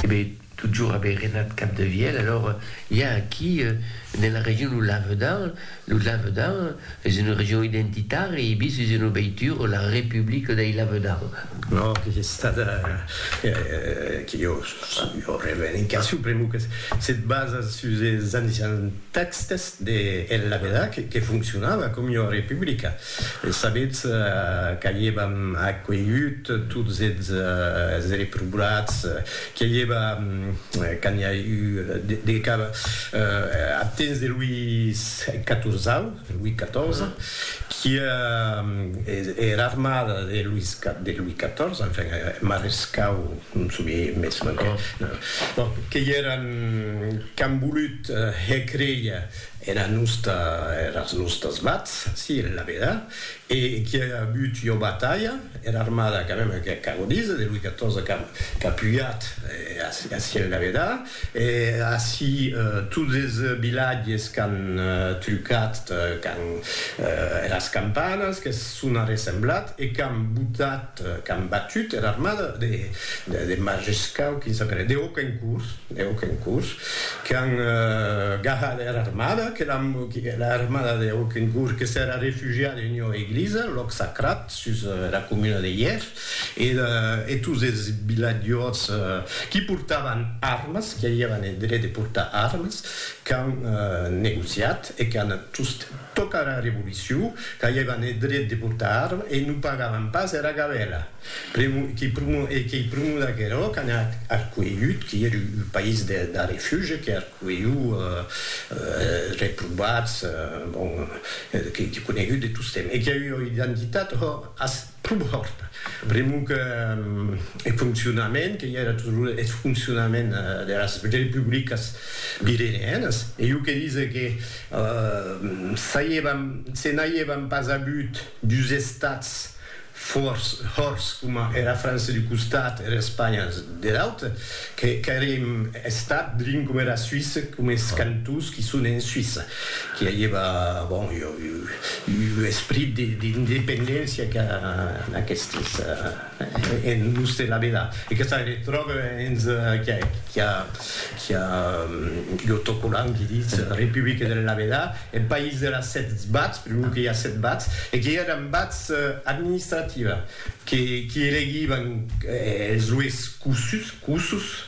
Ebe, totjorn ebe Renat Capdevièlh, alors i a aquí, ne la region lo Lavedan, lo Lavedan es una region identitària, e bis es una veitura, la Republica dei Lavedan. No, que es estada, que jo, jo revendicacion, pr'amor que se basa sus es anni 70, Tèxtes de El Labedac que foncionava com ua republica. Sabetz qu'a'i èva acuelhut tots eths reprobats, qu'a'i èva, quand i a eu de cap, ath temps de Louis Catorzau, Louis XIV, qu'ia er armada de Louis XIV, enfin, er marescau, non somiei mès manquen, bon, que i èran qu'an volut, Hè creia era nosta, eras nostas vats, si, la veda, e qui a avut ua batalha, era armada quand même que ac agodis, de Louis XIV qu'a qu'a pujat aciu en la veda, e ací tots es vilatges qu'an trucat quand eras campanas, que s'on arressemblat e qu'an botat, qu'an batut era armada de Majescau, quin sap era, de Hoquencourt, de Hoquencourt, qu'an gahat era armada, que l'an, era armada de Hoquencourt que s'èra refugiada en ua eglisa, lòc sacrat, sus era comuna de Hièrs, e e tots es vilatjòts qui portavan armes, qui avián eth dret de portar armes, qu'an negociat e qu'an tostemp. Tòca era Revolucion, qu'aievan eth dret de portar arma e non pagavan pas era gabèla. E qu'ei prumor d'aquerò qu'anà ath Cuelhut, qui ère un país de refuge, que ath Cuelhut, es reprovats, bon, qu'ei conegut de tostemp. E qu'ei ua identitat, hò, Pum hòrt. Pr'amor que eth foncionament, que i era toujours eth foncionament deras republicas pireneenas, e jo que dise que se n'aiévan pas avut dus estats hòrts coma era França d'un costat e era Espanha der aute, Qu'èrem estat drin coma era Suisse, coma es cantons qui son en Suisse, qui aieva, bon, ua esprit d'independéncia que en aquestes, en los de la Vela. E que se retròbe hens qui a ua autocolant qui ditz Republique de la Vela, eth país de las sèt bats, pr'amor que i a sèt bats, e que i èran bats administratives. que qui elegivan es lois cussus,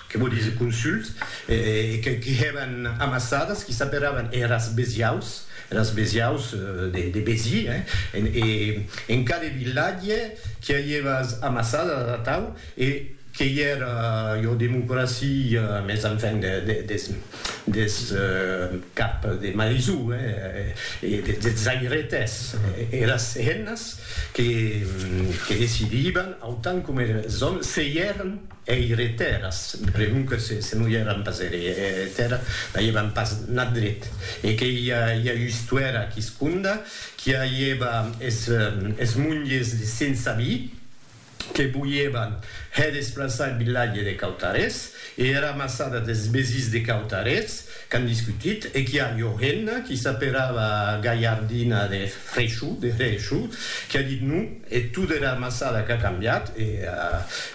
que vò dire consults, e que qui hèvan amassadas, qui s'aperavan eras besiaus, eras besiaus de Besi, e en cada vilatge qui avieva es amassadas atau, e qu'ei era, jo, democracia, mes enfin, des. des cap de maisó e des zairetes e las hennas que decidivan autant coma es òmes se i èran eiretèras, pregonque se non i èran pas eiretèras n'avián pas nat dret e que i a ua istuèra quisconda qui avieva es monges de sense vi. que voièvan hè desplaçar eth vilatge de Cautarés e era massada des Besís de Cautarés, qu'an discutit, e qu'i a ua hemna qui s'aperava Galhardina de Freixu, de Hrechu, qui a dit non, e tot era massada qu'a cambiat e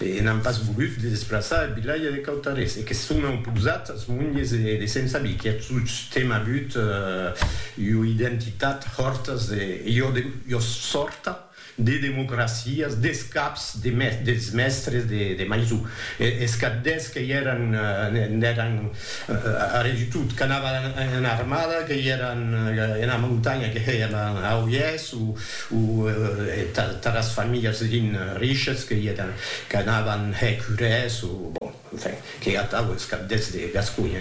e n'an pas volut de desplaçar eth vilatge de Cautarés e que son auposat as monges de Sent Sabí, qui a tostemp avut ua identitat hòrtas de ua sòrta. de democracias, des caps de mes, des mèstres de, de maison, e, es capdèths que i èran, n'èran arrè du tot, qu'anavan ena armada, que i èran ena montanha, que hèi èran a Oièth, o, o tath, tath as familhas, rin, riches, que i èran, qu'anavan hèr curès, o, bon. Enfin, que atau es cabdèths de Gasconha.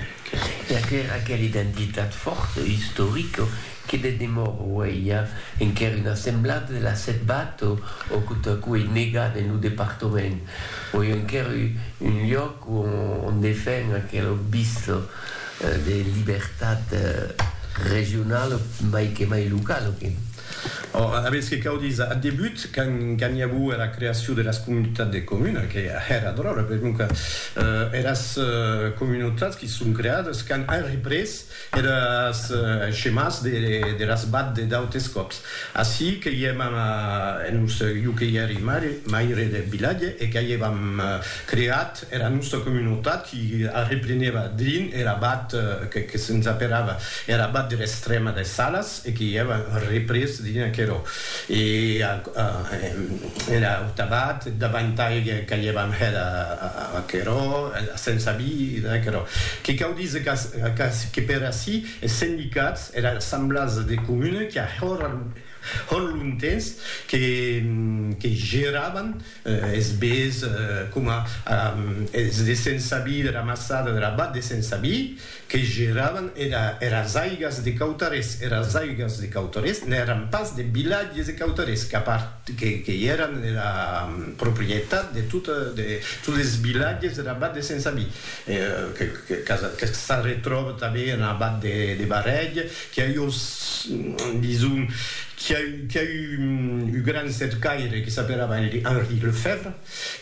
Per que era aquela identitat fòrta, istorica, que de demor aueia enquer una semblada de la Setbata o que totacú ei negada en lo departament, auie enquer un lloc ont defen aquela vista de libertat regionala, mai que mai locala. Ora, aves que cau díser, ath debut, quand i aguo era creacion deras comunitats de comuna, que hèra dròlla, per non que eras comunautats qui son creades quand an représ eres schemàs deras bad de d'autes còps. Ací que i èm en Urselh, jo que i èri maire deth vilatge e qu'a i èvam creat Era nòsta comunautat i arreplenèva drin er abat que se'n zaperava, er abat der Estrèma des Salas e que i èva représ drin aquerò. E er aut abat davantai qu'aievam hèt aquerò, se'n sabi d'aquerò. Que cau díser que per ací es sendicats, era Assemblàs de Comuna qu'a hòr lontens que geravan Es bés coma es de Sensabi, de la Massada, de la Bat de Sensabi, que geravan eras aigas de Cautarés. Eras aigas de Cautarés n'èran pas de vilatges de Cautarés, que i èran era proprietat de totes es vilatges dera Bat de Sensabi, que s'arretròba tanben ena Bat de Barrèg Qu'i a eu, dison, qu'i a eu, qu'i a eu un gran cercaire que s'aperava Henri Lefèvre,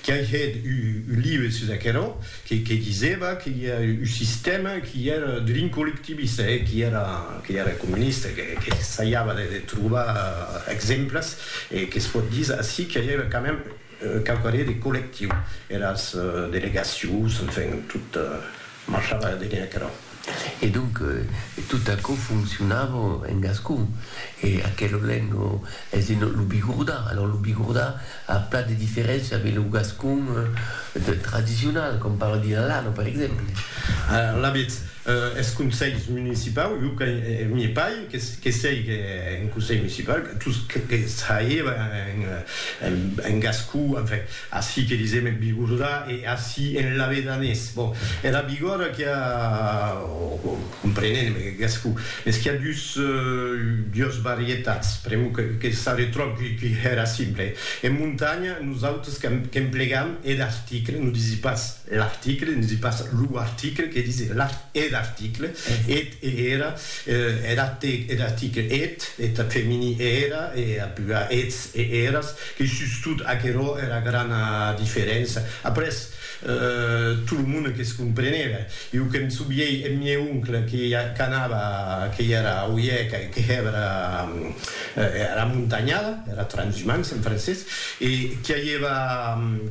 qu'i a hèt un live sus aquerò, que, que disèva que i a un sistèma qu'i èra drin collectivista, e qu'i èra, qu'i èra comunista, que, que s'aiava de, de trobar exemples, e que's pòt díser ací qu'i a eu quand même, Quauquarrier de collectiu, eras delegacions, enfin, tot marchava darrèr aquerò. E donc, tot aquò foncionava en gascon. E aquelo lèng es un, lo bigordà. Alòrs, lo bigordà a plan de diferéncia avec lo gascon tradicional, com parla Dilalano, per exemple. Alavetz, Eth conselh municipau, jo que n'i pai, que sei qu'en conselh municipau, tous que traievan en gascon, enfin, ací que disem en bigordà e ací en lavedanés. Bon, era bigòrda qu'i a, o comprenent en gascon, mès qu'i a dus, dues varietats, pr'amor que s'arretròb qu'i hèra simple. En montanha, nosautres qu'emplegam er article, non disi pas L'article, ne dis pas lo article, que dis er article, et e era, er article, er article, et, et femini e era, e a pua ets e eras, que sustot aquerò era grana diferença. Après, tot lo monde que's comprenève. Iu que'm souviei eth mieu oncle que qu'anava, que i era a Oieca e que hèvera Era montanhada, era transhumance en francés, e qu'i aieva,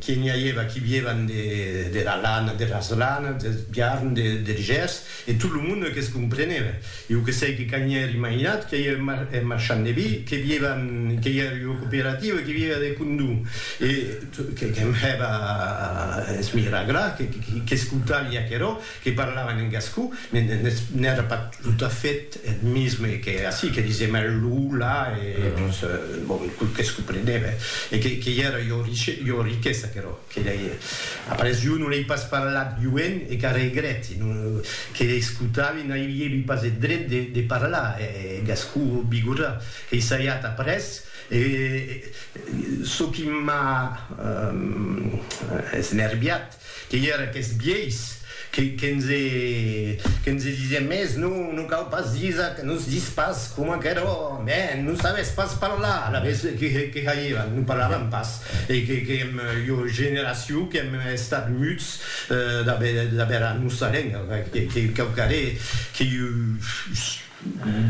qu'i n'i aieva qui viévan de, dera lana, deras lanas, deth biarn, de, der gers, e tot lo monde que's compreneve. Iu que sei que cani ère imaginat, qu'i aieve mar, eth marchand de vi, que viévan, qu'i ère ua cooperativa, qu'i viéva de condó, e, que, que'm hèva a esmiragrar, que, que'scoutavi aquerò, que parlavan en gascon, n'èra pas tot a fait eth misme que ací, que disèm eth lo, la, e quau que's comprenève, e qu'ei era ua riquesa aquerò, que lei, après jo non ei pas parlat joen e qu'a regrèti, que lei escotavi n'aviévi pas eth dret de parlar eth gascon bigorrà, qu'ei saiat après, e çò qui m'a esnerviat, Que i era qu'es biais, que nse disien mès non, non cau pas disa, que nos dis pas coma qu'eró, mè non sabes pas parlar, alavetz que hairan, non parlaran pas, e que èm ua generacion qu'èm estat muts d'aver era nosa lenga, que quauquarré que iu.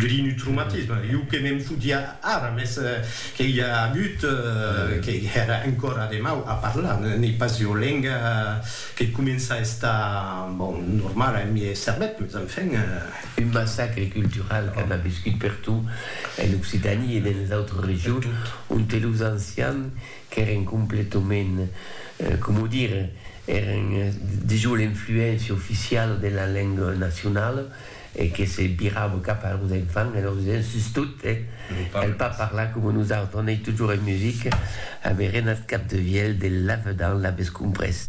Grinutrumatisme, jo que me'n fotia ara, mès que i a agut que èra encòra de mau a parlar, n'ei pas ua lenga que comença a estar, bon, normala en miei cervèth, mès enfin. Un massacre cultural que an aviscut pertot en Occitanie e dens les autres regions, onte los ancians qu'èren completament, coma dire, èren dejós l'influéncia oficiala de la lenga nacionala, e que se virava cap a los enfants e lor disián, sustot, eh, cal pas parlar coma nosautres, on ei totjorn en musica, avèren ath cap de vielh de lavedan, l'aves comprés?